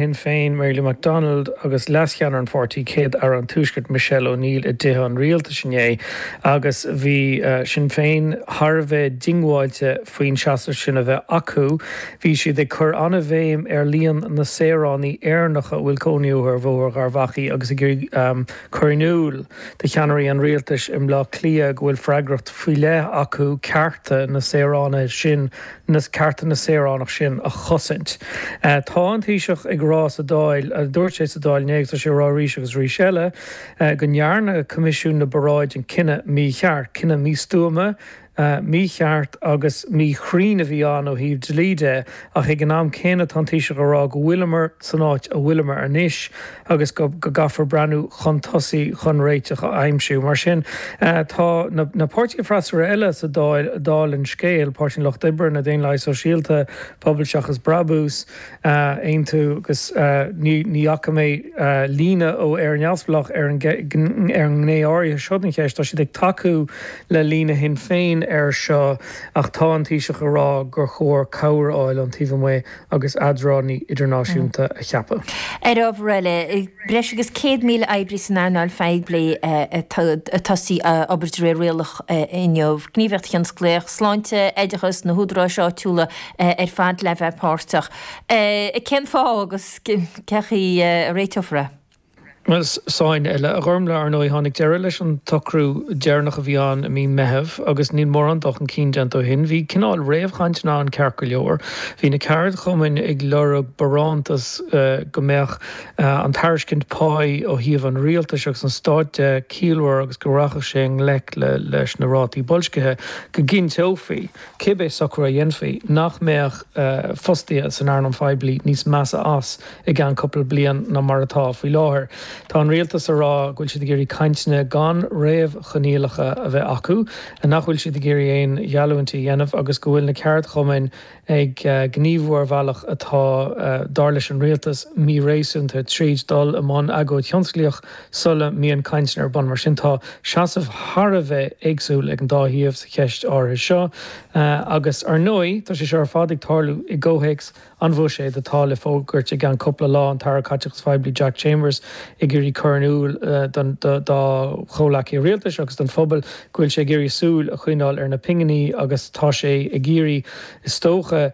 Shinn Féin, Mary Lou McDonald, agus leascheannaire an pháirtí, Céad Aire an Tuaiscirt, Michelle O'Neill, i dTithe an Rialtais inné agus bhí Sinn Féin thar a bheith diongbháilte faoin seasamh sin a bheith acu. Bhí siad ag cur an-bhéim ar líon na saoránaigh Éireannacha a bhfuil cónaí orthu ar Bhóthar Gharbh Achaidh agus ag iarraidh cur in iúl do cheannairí an Rialtais i mBleá Cliath go bhfuil freagracht faoi leith acu cearta na saoránaithe sin a na cearta na saoránach sin a chosaint. Tá an Taoiseach ag rá sa Dáil, dúirt sé sa Dáil inné agus tá sé ag rá arís agus arís eile, go ndearna Coimisiún na bParáideanna cinneadh mícheart. Cinneadh místuama, mícheart agus míchruinn a bhí ann ó thaobh dlí de ach ag an am céanna tá an Taoiseach ag rá go bhfuileamar san áit a bhfuileamar anois. agus go gcaithfear breathnú chun tosaigh chun réiteach a aimsiú. Mar sin, tá na páirtithe freasúra eile sa Dáil sa Dáil ar an scéal, Páirtí an Lucht Oibre, na Daonlathaigh Shóisialta, Pobal Seachas Brabús, Aontú, agus ní fhaca mé líne ó Éire Neamhspleách ar an ngné áirithe seo den cheist, tá siad ag tacú le líne Shinn Féin air seo, ach tá an Taoiseach ag rá gur chóir cabhair a fháil ón taobh amuigh agus eadránaí idirnáisiúnta a cheapadh. Ar ábhar eile, breis agus 100,000 oibrí san earnáil phoiblí ag tosú ag obair de réir rialach inniu, gníomhaíocht thionsclaíoch, sláinte, oideachas, na húdaráis áitiúla ar fad le bheith páirteach. Cén fáth agus cé chaoi a réiteofar é? Ceist eile, a Ghormfhlaith, ar ndóigh, tháinig deireadh leis an tsocrú deireanach a bhí ann i mí Meitheamh agus níl mórán dul chun cinn déanta ó shin. Bhí cineál réamhchainteanna ann ceart go leor. Bhí na ceardchumainn ag lorg barántas go mbeadh an tairiscint páí ó thaobh an rialtais agus an stáit de ciallmhar agus go rachadh sé i ngleic leis na rátaí boilscithe, go gcinnteofaí, cibé socrú a dhéanfaí, nach mbeadh fostaithe san earnáil phoiblí níos measa as. i gceann cúpla bliain ná mar atá faoi láthair. Tá an rialtas ag rá go bhfuil siad ag iarraidh cainteanna gan réamhchoinníollacha a bheith acu, nach bhfuil siad ag iarraidh aon gheallúint a dhéanamh agus go bhfuil na ceardchumainn ag gníomhú ar bhealach atá, dar leis an rialtas, míréasúnta tríd dul i mbun agóid thionsclaíoch sula mbíonn cainteanna ar bun. Mar sin tá seasamh thar a bheith éagsúil ag an dá thaobh sa cheist áirithe seo agus ar ndóigh tá sé seo ar fad ag tarlú i gcomhthéacs An bhuiséad atá le fógairt i gceann cupla lá, an tAire Caiteachais Phoiblí Jack Chambers ag iarraidh cur in iúl dá chomhleacaithe rialtais agus don phobal go bhfuil sé ag iarraidh súil a choinneáil ar na pinginí agus tá sé ag iarraidh is dócha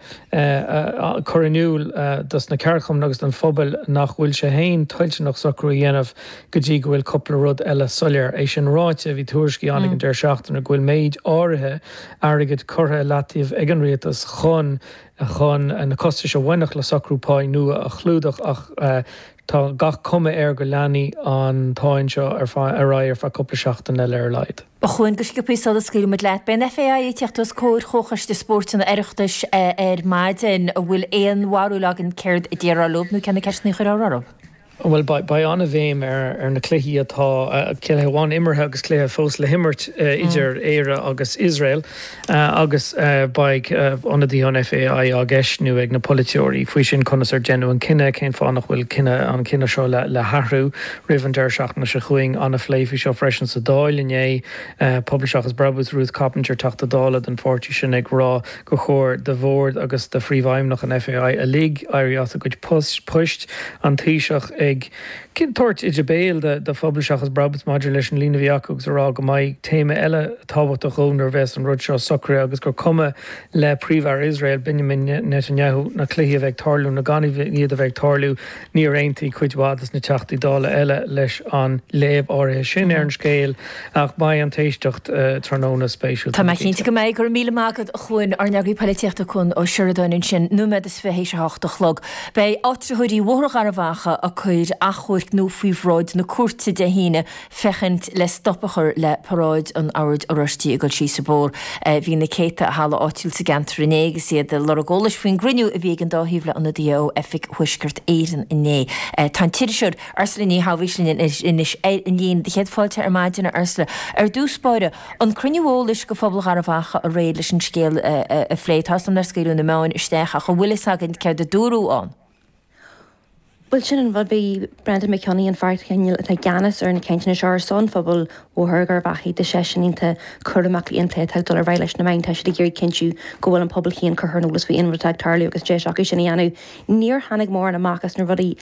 cur in iúl dos na ceardchumainn agus don phobal nach bhfuil sé féin toilteanach socrú a dhéanamh go dtí go bhfuil cupla rud eile soiléir. É sin ráite, bhí tuairiscí ann ag an deireadh seachtaine go bhfuil méid áirithe airgid curtha i leataobh ag an rialtas chun chun na costais a bhainfeadh le socrú páí nua a chlúdach ach tá gach cuma air go leanfaidh an tsáinn seo ar aghaidh ar feadh cúpla seachtain eile ar a laghad. A Chuain, go sciobtha sula scaoilfidh muid leat. Beidh an FAI ag teacht os comhair Chomhchoiste Spóirt an Oireachtais ar maidin. An bhfuil aon bharúil againn céard a déarfar leob nó cé na ceisteanna a chuirfear orthu? Bhuel, beidh an-bhéim ar na cluichí atá, cluiche amháin imeartha agus cluiche fós le himirt, idir Éire agus Iosrael agus beidh ionadaithe an FAI á gceistniú ag na polaiteoirí faoi sin, conas ar deineadh an cinneadh, cén fáth nach bhfuil cinneadh, an cinneadh seo le hathrú roimh an deireadh seachtaine seo chugainn. An-phlé faoi seo freisin sa Dáil inné, Pobal Seachas Brabús, Ruth Coppinger, Teachta Dála den pháirtí sin ag rá gur chóir do Bhord agus do Phríomhfheidhmeannach an FAI uilig éirí as a gcuid poist, An Taoiseach ag tabhairt íde béil do Phobal Seachas Brabús maidir leis an líne a bhí acu agus ag rá go mbeidh téama eile tábhachtach dhóibh nuair a bheas an rud seo socraithe agus gur cuma le Príomh-Aire Iosrael, Benjamin Netanyahu, na cluichí a bheith ag tarlú nó gan iad a bheith ag tarlú. Níor aontaigh cuid mhaith de na Teachtaí Dála eile leis an léamh áirithe sin ar an scéal ach beidh an t-éisteacht tráthnóna spéisiúil, tá mé cinnte. Go mbeidh, go raibh míle maith agat a Chuain, ár n-eagraí polaitíochta Cuan Ó Seireadáin ansin, nóiméad is fiche théis a hocht a chlog. Beidh áitritheoirí Bhóthar Gharbhachaidh ag cur achomhairc nua faoi bhráid na cúirte Dé hAoine féachaint le stop a chur le Paráid an Oird Oráistigh ag goil síos an bóthar. Bhí na céadta i halla áitiúil sa gceantar inné agus iad ag lorg eolais faoin gcruinniú a bhí ag an dá thaobh le ionadaithe ó Oifig Thuaisceart Éireann inné. Tá an t-iriseoir Ursula Ní Shabhaois linn anois ar an líne. Do chéad fáilte ar maidin, a Ursula. Ar dtús báire, an cruinniú eolais do phobal Gharbhachaidh aréir leis an scéal a phlé, tá fhios agam nár scaoileadh na meáin isteach ach an bhfuil fhios againn céard a dúradh ann? Bhuel, sin an rud, bhí Breandán Mac Cionnaith, an fear cineál atá i gceannas ar na cainteanna seo ar son phobal Bhóthar Gharbhachaidh, deir seisean in áit a chur amach an plé atá ag dul ar aghaidh leis na meáin, tá siad ag iarraidh cinntiú go bhfuil an pobal féin curtha ar an eolas faoi aon rud atá ag tarlú agus deis acu sin a dhéanamh. Níor tháinig mórán amach as na rudaí